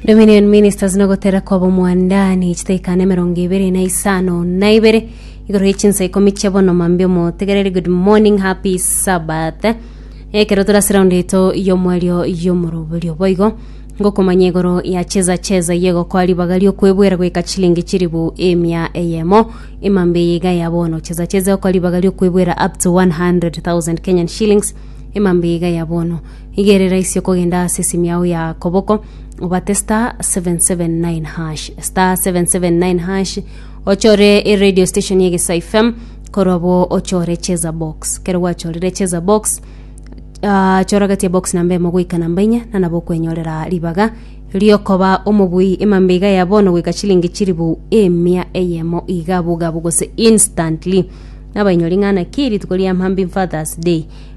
Dominion Ministers na gotera kwa bomwandani chitaikane mirongo ibere na isano na ibere igoro ye chinsa ikomi chia bono mambi omotegereri good morning happy sabbath ekero turase round eto yomwario yomoroberio boigo ngokomanya igoro ya cheza cheza yegokoa ribaga riokwebwera goika chilingi chiribu emia eyemo emambi eye iga ya bono cheza cheza okoa ribaga riokwebwera up to 100,000 Kenyan shillings emambi iga ya bono Igerera ise okogenda ase esimi yao ya koboko, obate star 779 hash star 779 hash ochore eradio station ya egesa fm korwa bo ochore cheza box kero gwachorire cheza box ah, chora gati ya box namba emo goika namba inye na nabo okwenyorera ribaga riokoba omobui emambe iga ya bono goika chilingi chiribu emia eyemo iga bogabu gose instantly nabainyori ng'ana ki rituko ria mambim fathers day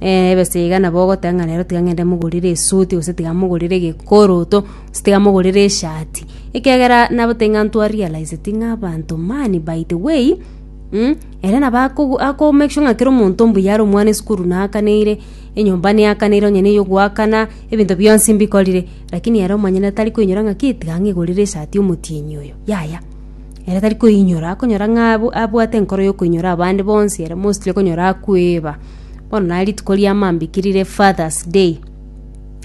ebesa iga nabo ogoteba ng'a rero tiga ng'ende mogorere esuti gose tiga mogorere egekoroto, gose tiga mogorere eshati, ekiagera nabote ng'a ntwa realiseti ng'a abanto mani by the way ere nabo akogo ako make sure ng'a kera omonto mbuya are omwana esukuru naakaneire, enyomba neakaneire onye na eyogoakana, ebinto bionsi mbikorire, lakini ere omonyene tari koinyora ng'a ki tiga ng'igorere esati omotienyi oyo, yaya, ere tari koinyora, akonyora ng'a abu abwate enkoro ya okoinyora abande bonsi ere mostly okonyora akoeba. Bono naye rituko ria mambikiri rire Father's day,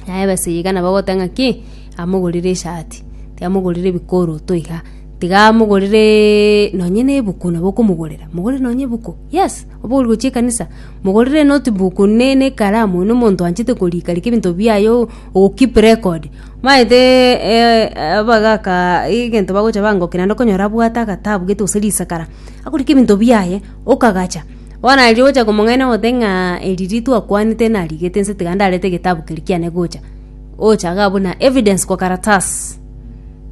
naye abasege iga nabo bagoteba ng'a ki, amogorere eshati, tiamogorere ebikooroto iga, tiga amogorereeee nonye na ebuku nabo okomogorera, mogorere nonye ebuku, yes, oba ori gochia ekanisa, mogorere enotebook ne ne ekaramu na omonto oanchete korika rika ebinto biaye o- o keep record, maeteeeee abagakaa egento bagocha bangokia naende okonyora abwate agatabu gete gose risakara, akorike ebinto biaye, okagacha. Bono arigia gocha komong'aina omote ng'a eri ritu akwanete narigete inse tiga ndarete egetabu keria kiane gocha. Ocha iga buna evidence kwa karatasi.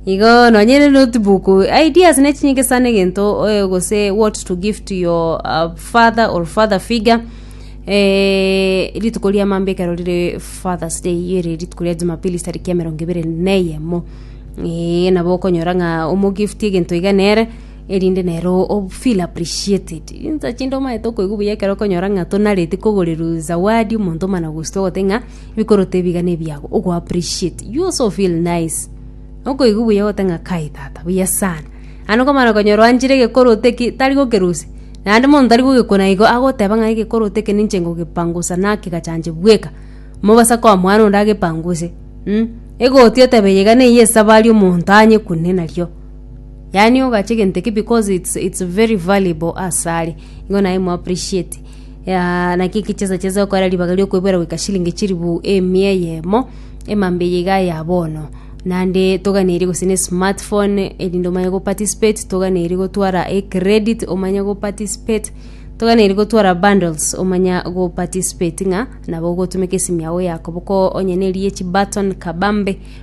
Igo nonye ne notebook ideas ne chinyinge sana egento oe gose what to give to your uh, father or father figure eh, rituko ria mambia ekero rire father's day iyo ere rituko ria jumapili ase tariki emerongo ebere na eyemo eh, nabo okonyora ng'a omo gift egento iga nere erinde nero o feel appreciated. Insa chinde omaete okoigwa buya ekero okonyora ng'a tonareti kogoreru zawadi omonto omana gusito ogote ng'a bikorote ebiga ne ebiago ogo appreciate you also feel nice okoigwa buya ogote ng'a kai tata buya sana ande okomana konyora oanchire egekorote ki tari gokerusia naende monto tari gogekuna igo agoteba ng'a egekorote eke ninche ngogepangusa naki gachancha bweka mobasa koa mwana onde agepanguse mh egotia otebe iga neiyo esabari omonto anyekune nario. Yaani ogachia egento ekio because it's it's very valuable ase are, igo naye mo appreciate. Aa naki eki chesa chesa okora ribaga riokoebwera goika chilingi chilifu emia eyemo, emambia eye iga ya bono. Naende toganeiri gose ne smart phone erinde omanye go participate, toganeiri gotwara ecredit omanye go participate, toganeiri gotwara bundles omanye go participate ng'a nabo ogotumeka esimi yago yakoboka onye neri ye chibutton kabambe.